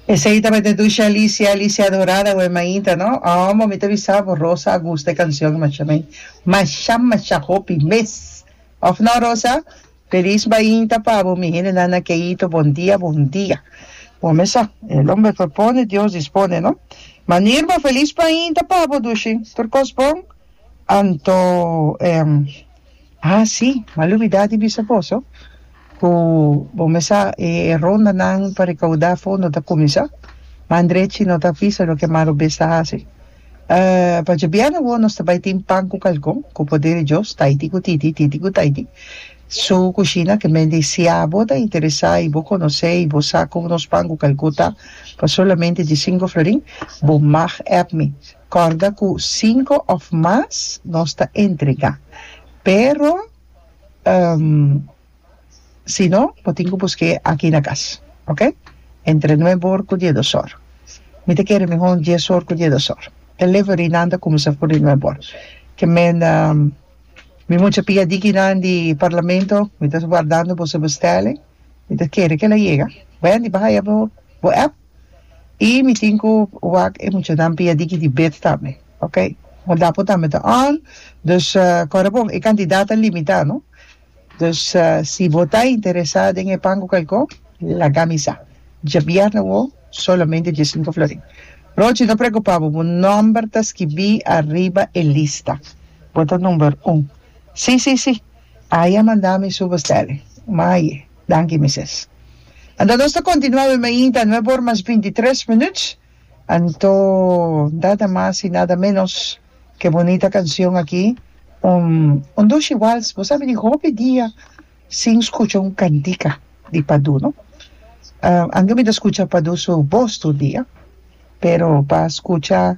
Esei tabata Dusha Alicia, Alicia Dorada wen mainta no. Omo mi ta bisa bo Rosa a gusta e cancion masha mei. Masha masha hopi mes. Of no Rosa? Feliz mainta pa bo mi hendenan na Keito bon dia bon dia. Bo mesa el homber propone Dios dispone no. Manirba Feliz mainta pa bo Dushi. Tur cos bon? Anto em Ha si, m'a lubidá di bisa boso ku bo mesa e rondanan pa rekaudá fondo ta kuminsá. Ma Andrechi no ta bisa loke Maro Bes ta hasi. Pa djobièrnu awor nos ta bai tin pan ku kalkon, ku poder di Dios, taiti ku titi, titi ku taiti. Su kushina ke men di si abo ta interesá i bo konosé i bo sa kon nos pan ku kalkon ta pa solamente di sinku florin, bo mag app mi. Corda cu cinco of mas nos ta entrega, pero si no bo tin cu busque aki na cas, ok? Entre nuebe or cu diedos or. Mi ta kere mihor dies or cu diedos or. Delivery nan ta cuminsa for di nuebe or. Ke menda mi mucha piadiki nan di Parlamento mi ta guardando boso bestelling, mi ta kere ke la yega. Wendy, baha ya bo app. i mi tin ku wak e muchanan pia di kiti bid tambe ok wan dapo tambe ta on dus kore bon e kantidad ta limita no dus si bo ta interesa den e pan ku kalko lagami sa djabièrnè awo solamente di e sinku florin Rochi no preokupa bo bo nòmber ta skibi ariba e lista bo ta number un si si si aya manda mi su bostèlè maye. Danki Mises. Anto nos ta continua awe mainta nueve or mas binti tres minuts anto nada mas y nada menos ke bonita cancion aki un un dushi wals bo sabi di hopi dia sin scucha un cantica di Padu no anto mi ta scucha Padu su bos tur dia pero pa scucha